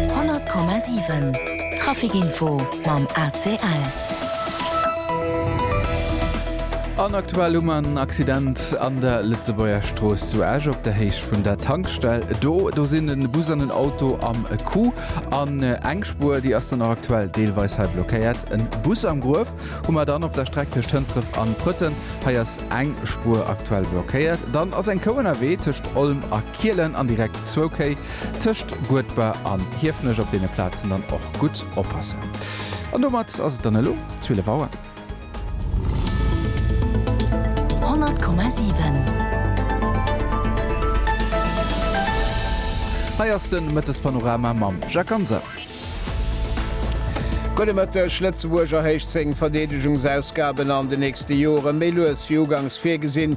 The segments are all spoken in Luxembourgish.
100,7 Trafic Info mam ACL. An aktuell hu mer en Accident an der Lëtzebuerger Strooss zu Esch op der Héicht vun der Tankstell. Do do sinn en Bus an en Auto am Coup. An eng Spuer, déi ass dann och aktuell deelweis hei blockéiert. En Bus am Gruef hu mer dann op der Streck tëscht Hëntref an Prëtten. Hei ass eng Spuer aktuell blockéiert. Dann ass eng Kou ënnerwee tëscht Olm a. Kielen an direkt zwou Kéi tëscht Guedber an Hiefenech op deene Plazen dann och gutt oppassen. An domat ass et dann elo 12 Auer. 100,7. Hei ass de Mëttespanorama mam Jacques Ganser. Gudde Mëtteg. Lëtzebuerg erhéicht seng Verdeedegungsausgaben an de nächste Jore méi lues wéi ugangs virgesinn.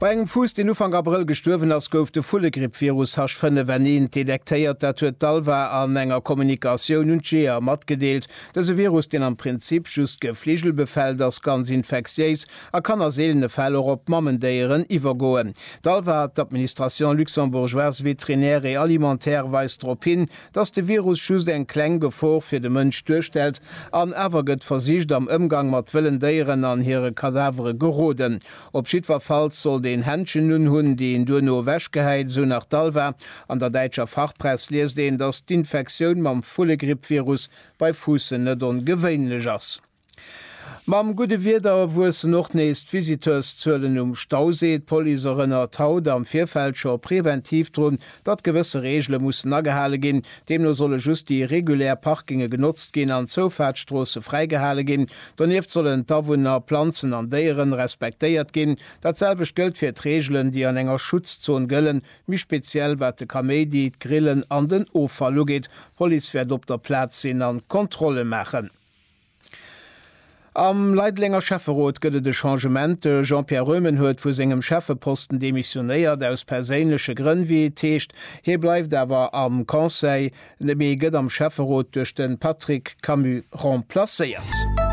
Bei engem Fuuss, deen Ufank Abrëll gestuerwen ass, gouf de Vullegrippvirus H5N1 detektéiert. Dat huet d'ALVA an enger Kommunikatioun un d'Jeeër matgedeelt. Dëse Virus, deen am Prinzip just Gefligel befält, ass ganz infektiéis a kann a seelene Fäll och op Mamendéieren iwwergoen. D'ALVA, d'Administration luxembourgeoise vétrinaire et alimentaire, weist drop hin, datt de Virus just eng kleng Gefor fir de Mënsch duerstellt an awer gëtt versicht am Ëmgang mat wëllen Déieren an hire Kadavere geroden. Op jiddwerfalls sollt een Händschen unhunn, déi een duerno ewech gehäit, esou nach d'ALVA. An der däitscher Fachpress liest een, datt d'Infektioun mam Vullegrippvirus bei Fuussen net ongewéinlech ass. Mam gudde Wieder wuessen och nees d'Visiteurszuelen um Stauséi. D'Police erënnert haut am Virfeld scho preventiv drun, datt gewësse Reegele mussen agehale ginn, deemno solle just déi regulär Parkinge genotzt ginn an d'Zoufaartstroosse fräigehale ginn, donieft sollen d'Awunner, Planzen an Déieren respektéiert ginn. Dat selwecht gëllt fir d'Reegelen, déi an enger Schutzzon gëllen, méi speziell wat de Kaméidi, d'Grillen an den Offall ugeet. D'Police wäert op der Plaz sinn an Kontrolle maachen. Am Leidelenger Schäfferot gëtt et e Changement, De Jean-Pierre Röhmen huet vu sengem Schäffeposten demissionéiert, aus perséinleche Grënn, wéi et heescht. Hie bleift awer am Conseil, mee gëtt am Schäfferot duerch de Patrick Camus remplacéiert.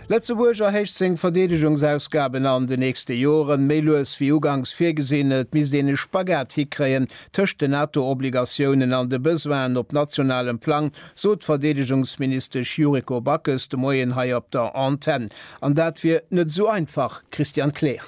Lëtzebuerg erhéicht seng Verdeedegungsausgaben an de nächste Joren, méi lues wéi uganks virgesinn. Et misst een e Spagat hikréien tëscht den NATO-Obligatiounen an de Besoinen op nationalem Plang, sot d'Verdeedegungsministesch Yuriko Backes de Moien hei op der Antenn. An dat wier net esou einfach, Christian Kleer.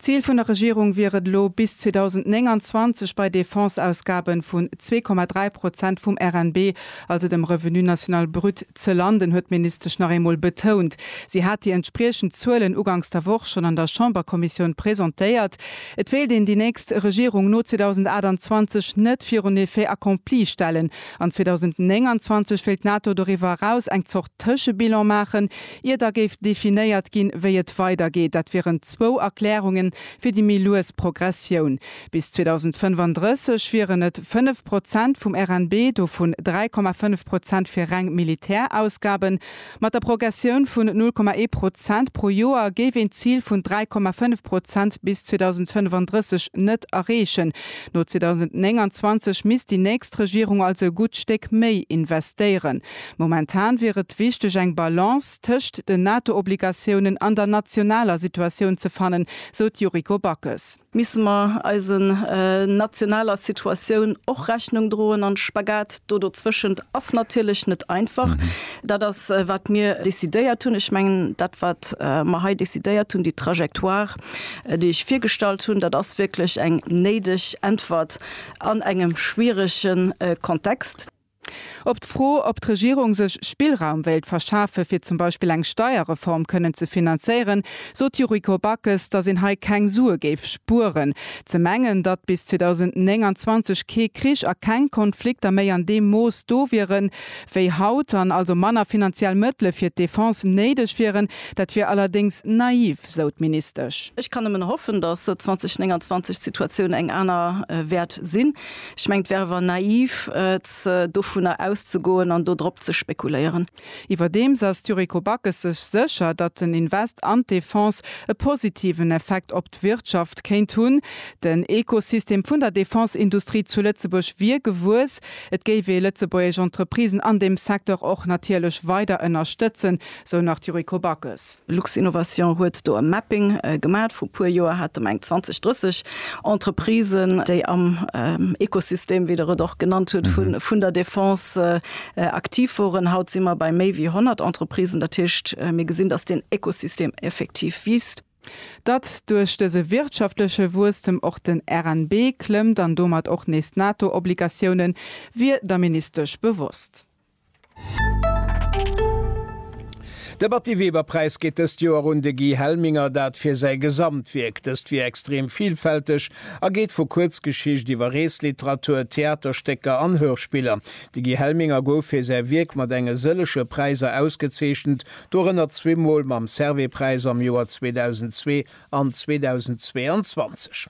D'Zil vun der Regierung wier et elo, bis 2029 bei Defense-Ausgabe vun 2,3 Prozent vum RNB, also dem Revenu national brut, ze landen, huet d'Ministesch nach eemol betount. Si hat déi entspriechend Zuelen uganks der Woch schonn an der Chamberkommissioun presentéiert. Et wéilt een déi nächst Regierung no 2028 net virun Effet accompli stellen, An 2029 wéilt d'NATO doriwwer eraus eng Zort Tëschebilan maachen, ier da géif definéiert ginn, wéi et weidergeet. Dat wieren zwou Erklärunge fir déi méi lues Progressioun. Bis 2035 wieren et 5 Prozent vum RNB, dovun 3,5 Prozent fir reng Militärausgaben. Mat der Progressioun vun 0,1 Prozent pro Joer géif een d'Zil vun 3,5 Prozent bis 2035 net erreechen. No 2029 misst déi nächst Regierung also e gutt Stéck méi investéieren. Momentan wier et wichteg eng Balance tëscht den NATO-Obligatiounen an der nationaler Situatioun ze fannen, sou d'Yuriko Backes. Misse mer eisen nationaler Situatioun och Rechnung droen an de Spagat do dozwëschent ass natierlech net einfach. Dat ass wat mir décidéiert hunn. Ech mengen dat wat mer hei décidéiert hunn, déi Trajectoire déi ech virgestallt hunn, dat ass wierklech eng néideg Äntwert an engem schwierege Kontext. Op d'Fro, ob d'Regierung sech Spillraum wéilt verschafe fir zum Beispill eng Steierreform kënnen ze finanzéieren, sot d'Yuriko Backes, datt een hei keng Sue géif spueren. Ze mengen, datt bis 2029 kee Krich a keng Konflikter méi an deem Mooss do wiere wéi haut an also manner finanziell Mëttele fir d'Defense néideg wieren, dat wier allerdéngs naiv, sou d'Ministesch. Ech kann nëmmen hoffen, datt 2029 d'Situatioun eng aner wäert sinn. Ech mengen, et wär awer naiv, dovunner auszegoen an do drop ze spekuléieren. Iwwerdeems ass d'Yuriko Backes sech sécher, datt den Invest an d'Defense e positiven Effekt op d'Wirtschaft kéint hunn. Den Ekosystem vun der Defenseindustrie zu Lëtzebuerg wier gewuess. Et géif ee lëtzebuergesch Entreprisen an deem Secteur och natierlech weider ënnerstëtzen, Sou nach d'Yuriko Backes. Luxinnovation huet do e Mapping gemat. Vru puer Joer hate mer eng 20, 30 Entreprisen, déi am Ekosystem, wéi Der et och genannt hutt, vun der Defense aktiv woren. Haut si mer bei méi wéi 100 Entreprisen. Dat heescht, mir gesinn, dass deen Ekosystem effektiv wiisst. Datt duerch dëse wirtschaftleche Wuesstem och den RNB klëmmt an domat och nees d'NATO-Obligatiounen, wier der Ministesch bewosst. De Batty Weber Präis geet dëst Joer un de Guy Helminger, dat fir säi Gesamtwierk. Dëst wier extrem villfälteg a geet vu Kuerzgeschicht iwwer Reesliteratur, Theaterstécker an Hörspiller. De Guy Helminger gouf fir säi Wierk mat enge sëllege Präiser ausgezeechent, dorënner zwee Mol mam Servais-Präis am Joer 2002 an 2022.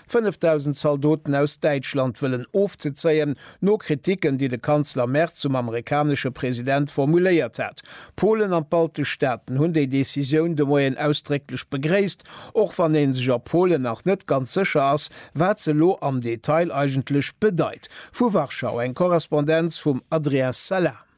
5.000 Zaldoten aus Däitschland wëllen ofzezéien, no Kriticken, déi de Kanzler Merz zum amerikanesche President formuléiert hat. Polen an d'baltesch Staaten hunn déi Decisioun de Moien ausdrécklech begréisst, och wann ee sech a Polen nach net ganz sécher ass, wat se elo am Detail eigentlech bedeit. Vu Warschau eng Korrespondenz vum Adrien Salam.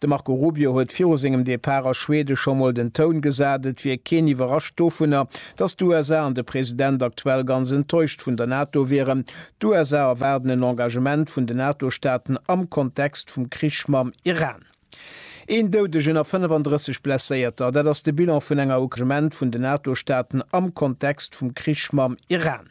De Marco Rubio huet viru sengem Depart a Schweden scho mol den Toun gesat, et wier keen iwwerrascht dovunner, datt d'USA an de President aktuell ganz enttäuscht vun der NATO wieren. D'USA erwaarden en Engagement vun den NATO-Staaten am Kontext vum Krich mam Iran. Een Doudegen a 35 Blesséierter, dat ass de Bilan vun enger Ukraine-Ment vun den NATO-Staaten am Kontext vum Krich mam Iran.